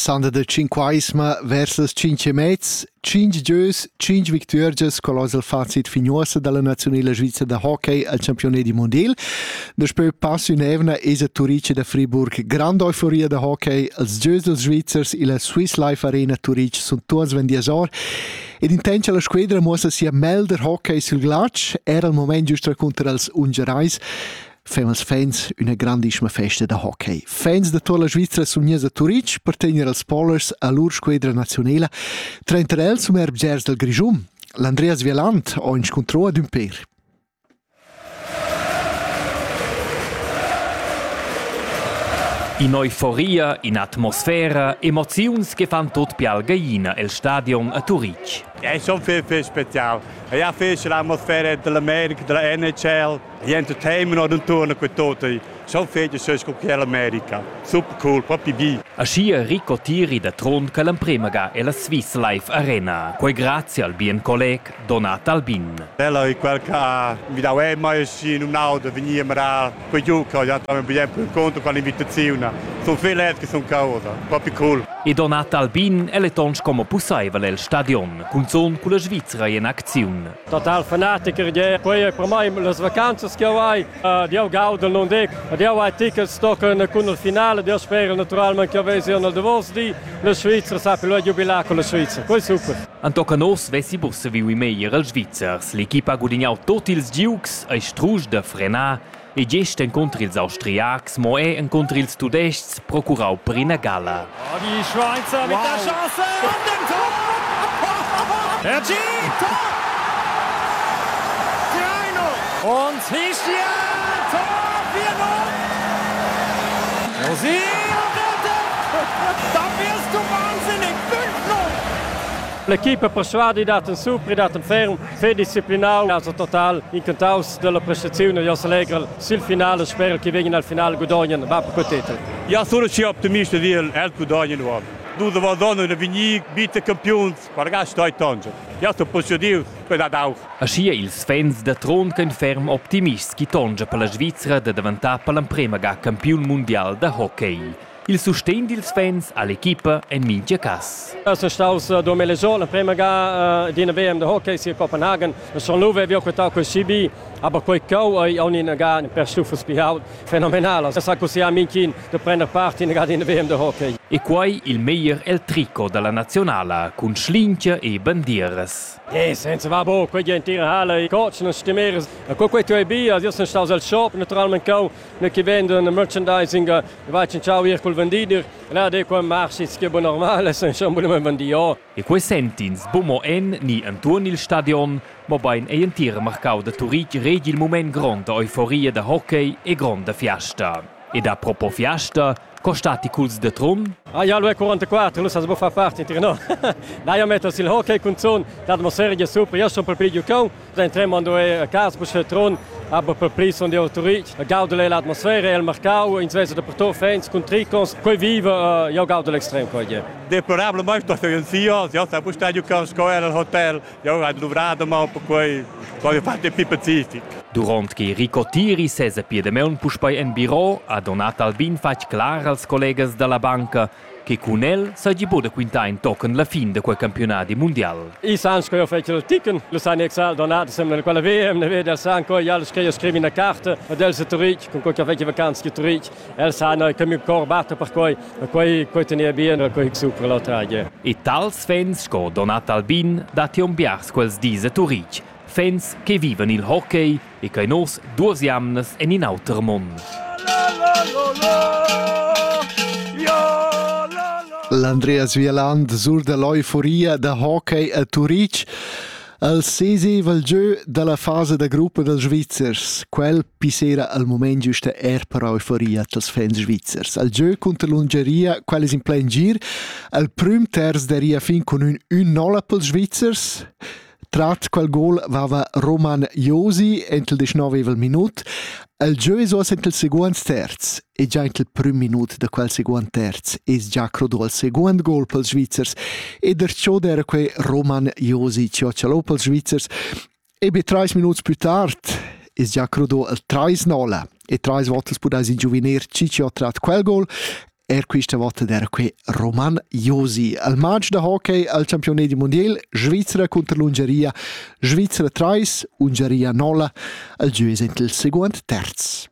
Sanda da Cinquaisma vers las cinque e mez, cinc gieus, cinc victuergias col oz il facit fignuossa dalla nazionala svizra da hockey al campione di mondial. Daspö pass ün'evna esa Turice da Friburg grande euforia da hockey, els gieus dels Svizzers illa Swiss Life Arena Turice sun tuots vendias or ed intendscha la squedra muossa sia melder hockey sül glatsch, era il moment giust raconter als Ungerais. fan els fans üna grandissima festa da hockey. Fans da toda la Svizra sun gners a Turitg per tegner als Polers a lur squedra nazionela, trainter els um erbgers dal Grischun, l'Andreas Vieland ho inscuntrò ad ün per. In'euforia, in'atmosfera, emoziuns che fan tot più algaina el stadion a Turitg. È schon viel, viel spezial. Ja, viel l'atmosfera dell'America, della NHL, Niente tema non torna quei tota. So fete so sco che l'America. Super cool, proprio vi. Aschia Rico Tiri da Trun che l'emprema ga ella Swiss Life Arena. Quei grazie al bien colleg Donat Albin. Ella è quel che ha invitato me mai sì in un auto venire a quei giocare, ja también bien per conto con l'invitazione. Sono felice che sono causa, proprio cool. E Donat Albin è letons como pussaivel el stadion, cunzon culla Svizzera in acziun. total fanatiker je quei per mai las vacanzas che ho hai ed io gauda non dic ed io hai tickets tochen cun il finale io spero naturalmente che vesi nel davos di la Svizzera sapi lo giubilar con la Svizzera quei super An tocca nos vesi bus saviu i meglier els Svizzers. L'equipa ha gudignau tot ils giugs, ei strusch da frenar, E gest encunter ils Austriacs, mo era encunter ils Tudestgs, procurau per ina gala. Oh, die Schweizer wow. mit der Chance und dem Tor! Hergé, Tor! 3-0! Und Hischia, Tor 4-0! Rosi am Ende! Da wirst du wahnsinnig! 5-0! L'equipe persuadida, supri dat ferm. Fedisciplinau ha el total incantaus dalla prestaziun e Jos Allegrel sil final e sperel che vegin al final gudognan va per quei titel. Ja sono schi optimista dil el gudognan uob. Dus Vadonna e Vignic bitte campiuns per gastar tangel. Ja sto posediu per dad aug. Aschia ils fans da Trond ein ferm optimists chi tongia per la Svizra da daventar per l'emprema ga campiun mundial da hockey. Il sustegn dils fans all'equipa en mintga cass. Es staus durant l'esorn l'emprema ga d'ina VM de hockey sia Copenhagen. Son Luve havia quetau quel CB, aber quei cheu ei aunc ina ga per stuffels pli ault fenomenala. Sa così ha Minkin de prender part in ga d'ina VM de hockey. E quei il meglier el tricot dalla nazionala cun schlingia e bandieras. Eh, senza va bo, quei entira halle, cotschen e stimeres. E co quei tu ei bia, io sun staus al shop naturalment cheu ne che vend un merchandising va cinciau ir col vendider là de qua marschits che bon normal san schon bugen vendier e quei sentins bu mo en ni entuorn il stadion mobein ei entir marcau da Turitg regi il mument gronda euforia da hockey e gronda fiasta ed a propo fiasta Co stati culs de Trun? Ah, ja, lu è 44, lu sa sbo fa part inter no. Na, io metto sil hockey con zon, l'atmosfera è super, io sono per pli giocon, da tremmo ando a casa per se Trun, aber per pli sono di autorit. Gaudel è l'atmosfera, è il mercao, in svesa da per to fans con tricons, coi viva, io gaudel extrem coi. Deplorabile mai sto in sia, io sta bu stadio con scola al hotel. Jau hai duvrà damaun perquai ho fatto più pacific. Durant che Rico Tiri sesa pia damaun puspei en biro, ha Donat Albin fatg clar als collegas dalla banca che cun el seigi buca da quintar in tochen la fin da quei campiunadi mundial. I san sco fetg ticken, lu san exal Donat sembla quella VM, ne veder san co jal scriu scrivi una carta ad el se turitg, con co che fetg vacanza che turitg. El sa no che miu cor batta per quei, e quei quei tenia bien, e quei supra la tragia. E tals fans sco Donat Albin dattion biars quels dis a Turitg, fans che vivan il hockey e che nos duas jamnas en in auter mond. L'Andreas Wieland sur dall'euforia da hockey a Turitg El seseval giu dalla fasa da gruppa dals Svizzers, quel pissera al moment giusta er per euforia dals fans svizzers. Al gieu cunter l'Ungeria, quel es in plein gir, al prüm terz daria fin con ün 1-0 pels Svizzers, Trat quel gol vava Roman Josi entl 19 minuut. El gieu es oas entl segunds terz. e già il prüm minut da quel seguond terz es già crodò il seguond gol pels Svizzers e der ciò d'era quei Roman Josic Cioccialò pels Svizzers e be trais minuts plü tard es già crodò il 3-0 e trais volte pudais ingiuvenir Ciccio ha trat quel gol Er questa volta era qui Roman Josi. Al match da hockey al campione di mondial Svizzera contro l'Ungaria Svizzera 3, Ungaria 0, al giù il secondo terz.